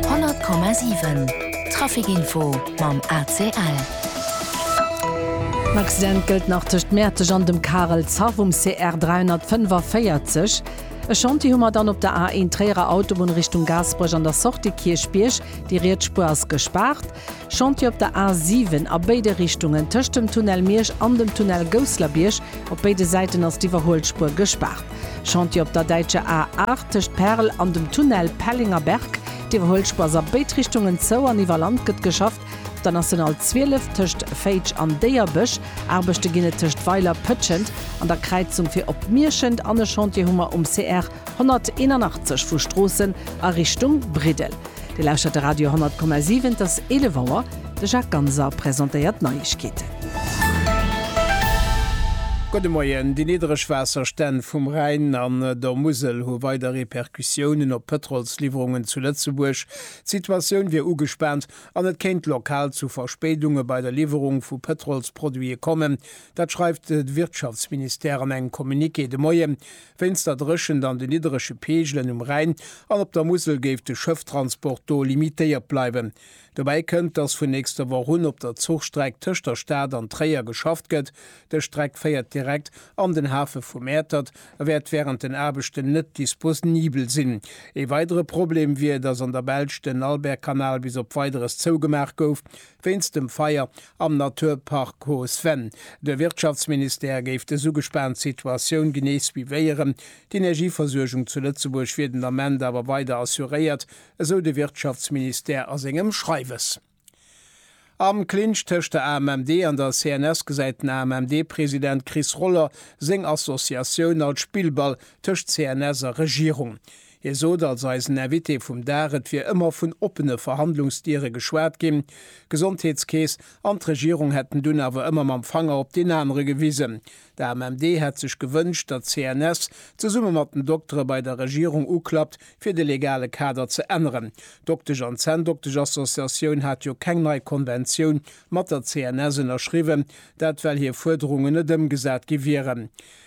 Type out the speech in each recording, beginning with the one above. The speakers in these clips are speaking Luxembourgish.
100,7 Trafic Info mam ACL. En Accident gëllt nach tëscht Mäerteg an dem Karel Zeff um CR 345. E Chantier hu mer dann op der A1 Tréierer Autobunn Richtung Gaasperech an der Sortie Kierchbierg. Déi riets Spuer ass gespaart. Chantier op der A 7 a béide Richtungen, tëscht dem Tunnel Miersch an dem Tunnel Gousslerbierg. Op béide Säiten ass d'Iwwerhuelspuer gespaart. Chantier op der däitscher A 8 tëscht Perl an dem Tunnel Pellinger Berg. D'Iwwerhuelspuer ass a béid Richtungen zou an iwwer Land gëtt geschafft. Op der National 12 tëscht Féitsch an Déierbech Aarbechte ginn et tëscht Weiler, Pëtschent an der Kräizung fir op Mierschent an e Chantier hu mer um CR 181 vu Stroossen a Richtung Briddel. Dir lauschtert de Radio 10,7, et ass 11 Auer. De Jacques Ganser presentéiert d'Neiegkeeten. Gudde Moien. Déi niddereg Waasserstänn vum Rhäin an der Musel hu weider Repercussiounen op d'Pëtrolsliwwerungen zu Lëtzebuerg. D'Situatioun wier ugespaant an et kéint lokal zu Verspéidunge bei der Liwwerung vu Pëtrolsproduite kommen. Dat schreift de Wirtschaftsministère an engem Communiqué de Moien. Wéinst der Dréchent an de nidderege Peegelen um Rhäin an op der Musel géif de Schëfftransport do limitéiert bleiwen. Dobäi kënnt, datt vun nächster Woch un op der Zuchstreck tëscht der Stad an Tréier geschafft gëtt. Dës Streck féiert direkt an den Hafe vu Mäertert a wäert wärend den Aarbechten net disposnibel sinn. Ee weidere Problem wier, datt an der Belsch den Albertkanal bis op Weideres zougemaach gouf wéinst dem Feier. Am Naturpark Coos Venn. De Wirtschaftsministère géif dës ugespaant Situatioun genee suivéieren. D'Energieversuergung zu Lëtzebuerg wier den Ament awer weider assuréiert, esou de Wirtschaftsministère a sengem Schreiwes. Am Clinch tëscht der AMMD an der CNS gesäit den AMMD-President Chris Roller seng Associatioun als Spillball tëscht CNS a Regierung. Hie sot als eisen Invité vum Dag, et wier ëmmer vun oppene Verhandlungsdiere geschwat ginn, d'Gesondheetskeess an d'Regierung hätten dunn awer ëmmer mam Fanger op deen anere gewisen. D'AMMD hätt sech gewënscht, datt d'CNS zesumme mat den Doktere bei der Regierung uklappt, fir de legale Kader ze änneren. D'Doktesch an Zänndoktesch-Associatioun hat jo keng nei Konventioun mat der CNS ënnerschriwwen, dat well hir Fuerderungen net ëmgesat gi wieren.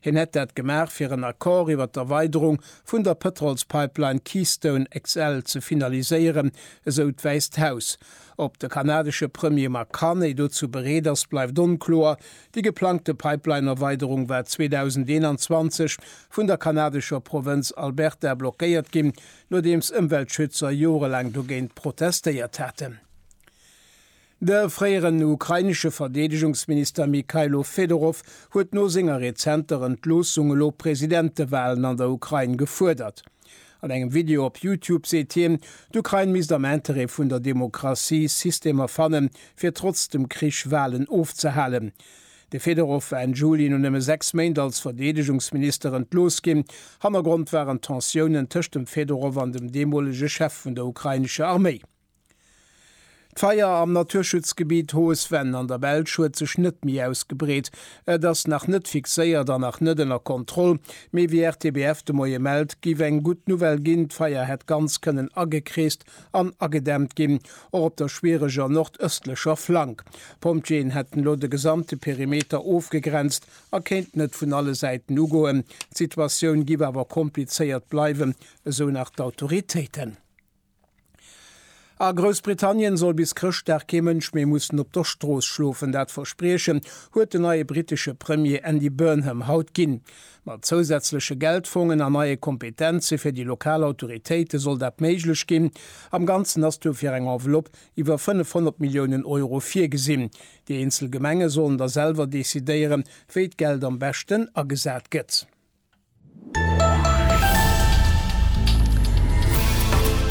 Hien hätt dat gemaach, fir en Accord iwwer d'Erweiderung vun der Pëtrolspipeline Keystone XL ze finaliséieren, esou d'Wäisst Haus. Ob de kanadesche Premier Mark Carney dozou bereet ass, bleift onkloer. Déi geplangte Pipeline-Erweiderung war 2021 vun der kanadescher Provënz Alberta blockéiert ginn, nodeems Ëmweltschützer jorelaang dogéint protestéiert haten. De fréieren ukrainesche Verdeedegungsminister Mykhailo Fedorov huet no senger rezenter Entloossung elo Presidentewalen an der Ukrain gefuerdert. An engem Video op Youtube seet hien, d'Ukrain misst am Interêt vun der Demokratie Systemer fannen, fir trotz dem Krich Walen ofzehalen. De Fedorov war Enn Juli no nëmme sechs Méint als Verdeedegungsminister entlooss ginn. Hannergrond waren d'Tensiounen tëscht dem Fedorov an dem deemolege Chef vun der ukrainescher Arméi. D'Feier am Naturschutzgebitt Hohes Venn an der Belsch huet sech net méi ausgebreet. Et ass nach net fixéiert an nach net ënner Kontroll. Mee wéi RTBF de Moie mellt, géif eng gutt Nouvelle ginn, d'Feier hätt ganz kënnen agekreest an agedämmt ginn, och op der schwiereger nordëstlecher Flank. D'Pompjeeën hätten elo de gesamte Perimeter ofgegrenzt a kéinten et vun alle Säiten ugoen. D'Situatioun géif awer komplizéiert bleiwen, esou nach d'Autoritéiten. A Groussbritannien soll bis Chrëschtdag kee Mënsch méi mussen op der Strooss schlofen. Dat Verspriechen huet den neie brittesche Premier Andy Burnham haut ginn. Mat zousätzleche Geldfongen an neie Kompetenze fir déi lokal Autoritéite soll dat méiglech ginn. Am Ganzen ass dofir eng Enveloppe iwwer 500 Milliounen Euro virgesinn. Déi eenzel Gemenge sollen da selwer decidéieren, wéi d'Geld am beschten agesat gëtt.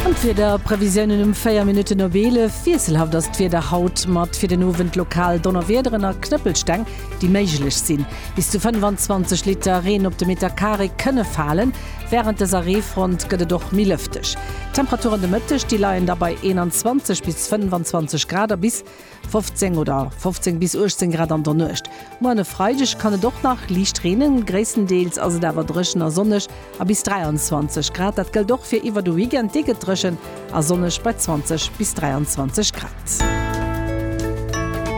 An d'Wieder Previsiounen um 4 Minutten op 11. Wiesselhaft ass d'Wieder haut mat fir den Owend lokal Donnerwiederen a Knëppelsteng déi méiglech sinn. Bis zu 25 Liter Reen op de Meter Carré kënne falen. Wärend dëser Reefront gëtt et och méi lëfteg. D'Temperaturen de Mëtteg déi leien da bei 21 bis 25 Grad a bis. 15 oder 15 bis 18 Grad an der Nuecht. Moien e Freideg kann et och nach liicht reenen, gréisstendeels ass et awer dréchen a sonneg a bis 23 Grad. Dat gëllt och fir iwwer de Weekend, dee gëtt dréchen a sonneg bei 20 bis 23 Grad.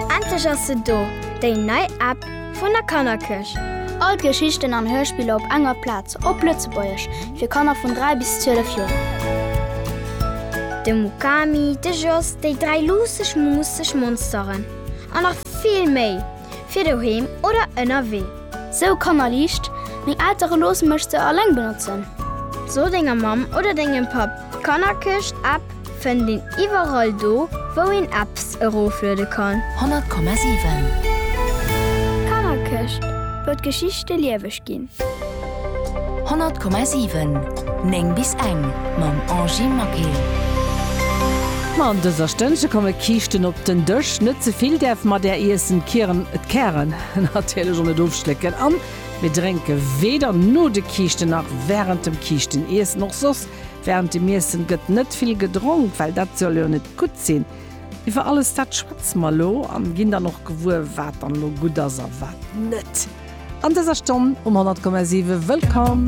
Endlech ass se do, déi nei App Vun der Kannerkirch. All d'Geschichten an Hörspiller op enger Plaz, op Lëtzebuergesch, fir Kanner vun 3 bis 12 Joer. De Mukami, de Jos, déi dräi luusseg muusseg Monsteren an nach vill méi, fir doheem oder ënnerwee. Sou kannerliicht, meng Eltere loosse mech se alleng benotzen. So denger Mamm oder dengem Papp d'Kannerkirch-App. Fënnt een iwwerall do wou een Apps erofluede kann. 100,7. D'Kannerkëscht, wou d'Geschichte lieweg ginn. 100,7. 9 bis eng mam Angie Maquet. Ma an dëser Stënnche komme Kiischten op den Dësch. Net ze vill däerf mat där iessen. D'Kieren, d'Kären natierlech och net ofschlécken. An mir drénke weder no de Kiischten nach wärend dem Kiischteniessen. Och soss Während dem Iessen gëtt net vill gedronk, well dat soll jo net gutt sinn. Iwwer alles dat schwätze mer elo an ginn dann och gewuer wat dann elo gutt ass a wat net. An dëser Stonn um 100,7 Wëllkomm!